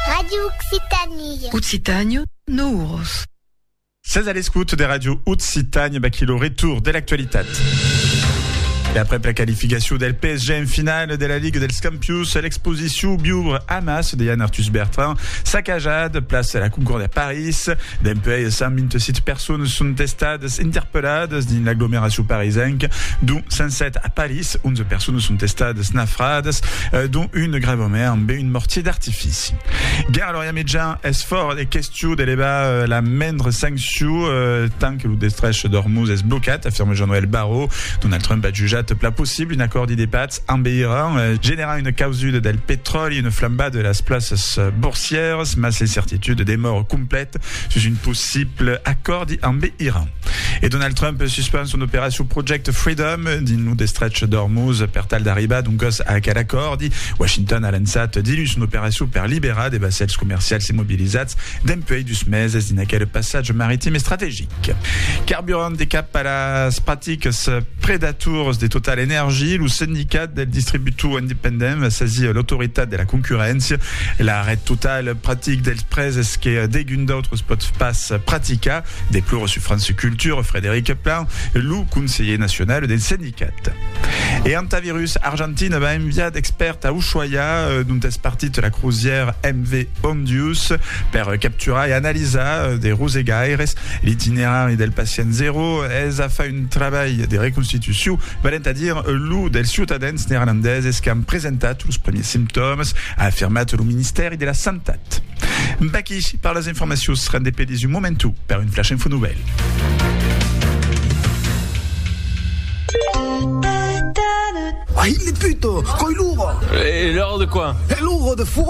Radio Occitanie. Occitània, no uros. Sètz a l'escout de Radio Occitània, baquí lo retour de l'actualitat. E après la qualificació del PSG en finale de la Ligue dels Campions, l'exposició Biubre Amas de Yann Arthus Bertrand, sacajat, place la Concorde à Paris, Paris. Dempuèi 127 personas son estadas interpelladas dins l'aglomeracion parisenca, dont 107 a Paris, 11 personas son estadas nafradas, dont una grèvament ambe un mortier d'artifici. Ger Lorian Mitjà, Es fòrt e question de levar la mendra sanccion tant que lo destrech d'Ormuz es blocat, afirma Jean-Noël Barrot. Donald Trump a jutjat pla possible un acòrdi de patz En Beirant, generar una causuda del petròli, una flambada de las plaças borsièras, mas l'incertituda demòra completa sus un possible acòrdi ambe Iran. E Donald Trump suspend son operacion Project Freedom dins lo destrech d'Ormuz per tal d'arribar doncas a aquel acòrdi. Washington a lançat diluns son operacion per liberar de vassèls comercials immobilizats dempuèi dus meses dins aquel passatge maritim estrategic. Carburant de cap a las practicas predatoras de TotalEnergies, lo Sindicat del Distributor Independent va sasir l'Autoritat de la Concurréncia. L'arrèst total practic dels prèses que degun d'autres pòt pas practicar, deplora sur France Culture Frédéric Plan, lo conselher nacional del Sindicat. E Hantavirus Argentina va enviar d'expèrts a Ushuaia, dont es partit la crosièra MV Ondius, per capturar e analizar de rosegaires l'itinerari del pacient zero. Es a far un trabalh de reconstitucion, valent a dire lo dels ciutadans neerlandeses qu'an presentat los primièrs simptòmas, a afirmat lo Ministèri de la Santat. Vaquí per las informacions, rendez-pedi's un momentu per un Flash Info Nouvèl. Uai, le puto! Coi luro! E loro de quoi? E loro de furo!